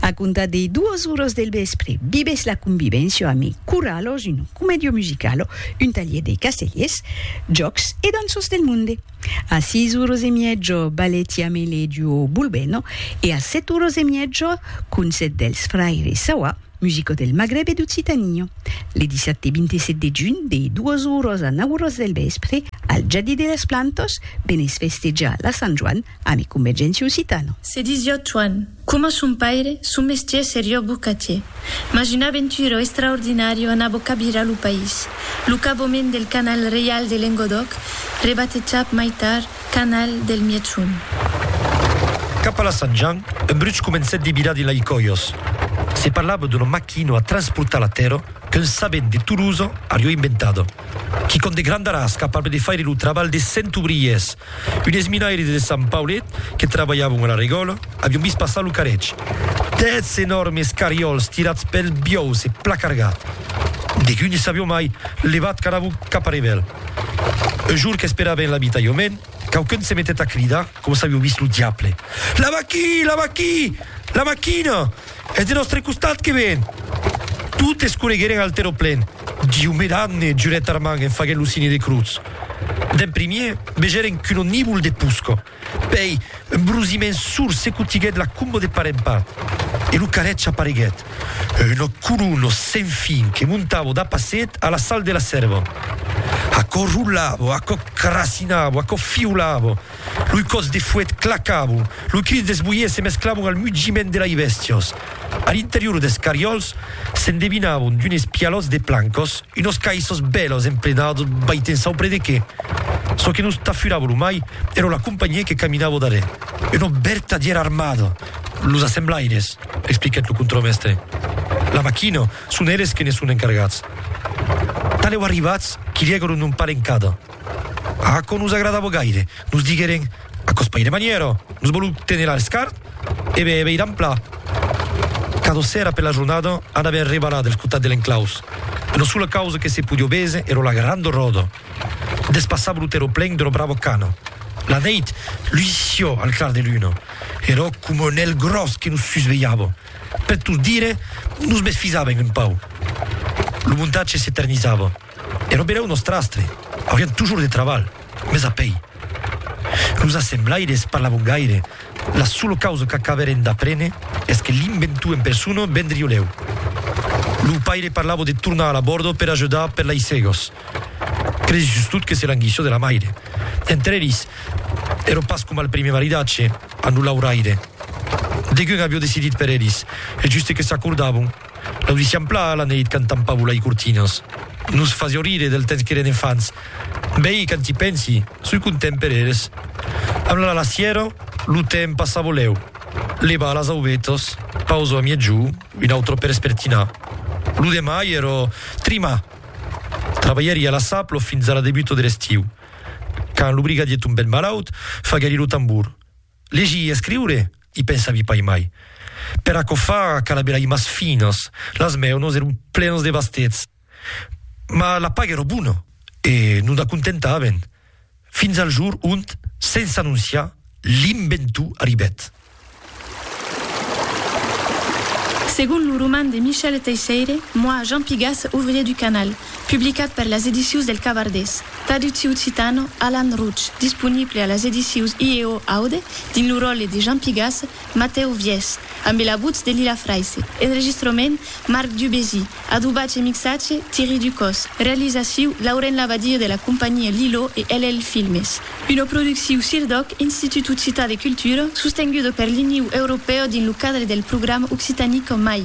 A comptar dei duos uros del vèspre, vivètz la convivencia a mi curralos, un commedio musicalo, un talhier dei castellers, jòcs e danços del monde. A sis uros e mièjo, balletti amei lei duo Bulbeno e a set uros e mièjo, concèrt dels fraires Sawa, musico del Magreb e d'Occitania. Le dissabte 27 de junh, dei duos uros a nau uros del vèspre, al Jardí de las Plantas, venètz festejar la Sant Joan Ami convergenti occitano. Se disió Tuan. Coma son paire, son mestier serió bocatier. Mas una aventura extraordinària anabó cabirar lo país. Lo caboment del canal reial de Lengodòc, rebatejat mai tard canal del Mièg-Sond. Cap a la Sant Jan, un bruch comencèt de virar de lai còios. Se parlava d'una maquina a transportar la tèrra qu'un sabent de Tolosa arió inventado. quicòm de grandaràs capable de faire lo trabalh de cent obriers. Unes minaires de Sant Paulet que trabalhavan a la regòla avián vist passar lo carretge. Dètz enòrmes carriòls tirats pels biòus e placargat. Degun ne sabion mai, levat qu'anàvon cap a Revel. Un jorn qu'esperaven en l'abitalhament, quauqu'un se metèt a cridar coma s'avió vist lo diable, La maquina! La maquina! La maquina! Es de nòstre costat que ven! Totes corregueren al terraplen. Diu me damne! jurèt Armand en faguent lo signe de crotz. D'en primièr, vegèren qu'un onívol de posca. Pèi, un brusiment sourd secotiguèt la comba de part en part. E lo carrètge apareguèt. Una colonna sen fin que montava d'a passet a la sal de la Sèrva. Aquò rolava, aquò crasinava, aquò fiolava. Lo còs de fuèt clacava, lo cris des boiers se mesclavan al mugiment de lai bèstias. A l'interior des cariòls s'endevinavan d'unes pialòts de plancas, unas caissas bèlas emplenadas vai te'n saupre de qué. Çò que nos tafurava lo mai èra la companhiá que caminava darrèr. Una vertadièra armada, los assemblaires, expliquèt lo contramèstre. La maquina, son eles que ne son encargats. Tanlèu arribats, quilhègaron un palenc cada. Aquò nos agradava gaire. Nos digueren, Aquò's pas ire manièra, nos vòlu téner al scart e be be ir en pla. Cada sèra per la jornada anava en rebalada al cotat de l'enclaus. Una sola causa que se podió véser era la granda ròda. Despassava lo terraplen d'una brava cana. La neit luisió al clar de luna. Era coma un èl gròs que nos susvelhava. Per tot dire, nos mesfisaven un pauc. Lo montatge s'eternizava. E robelèu nostrastre, aurián tujor de trabalh, mes a pei. Los assemblaires parlavon gaire, la sola causa qu'acabèren d'aprene es que l'inventor en persona ben driolèu. Lo paire parlava de tornar a la bòrda per ajudar per lei cegos. Credi sustot que se languissa de la maire. Entre eris, èra pas coma al primièr maridatge, amb lo lauraire. Degun aviá decidit per eris, e juste que s'acordavon, L'audissiam pla la neit cantant Pavula i Cortinas. Nos fasió rire del temps qu'eren enfants. Bèi, quand i pensi, soi content per eres. Amb la lasièra, lo temps passa volèu. Levar las aubetas, pausa a miègjò, un autre per espertinar. Lo demà i era trima! Trabalhèri a la Saplo fins a la debuta de l'estiu. Quand lo brigadier tombèt malaut, faguèri lo tambor. Legir e escriure, i pensavi pas mai. Per aquò fa cala bèla imas finas. Las meunos èron plenas de bastets. Ma la paga èra bona e nos n'acontentaven. Fins al jour ont, sens anonciar, l'inventor arribèt. Segon lo roman de Michel Teisseire, Moi, Jean Pigas, ouvrier du canal, publicat per las Edicions del Cavardés, Traducciu occitano, Alan Routch, disponible a las edicius IEO Aude, dins lo ròtle de Jean Pigasse, Matèu Viès, ambe la votz de Lila Fraisse, enregistrament, Marc Dubésy, adobatge e mixatge, Thierry Ducos, realizaciu, Lauren Labadie de la companhia Lilo e LL Filmes. Una producciu Cirdoc, Institut Occità de Cultura, sostenguda per l'Iniu Europèu dins lo cadre del programa Occitanie qu'en mai.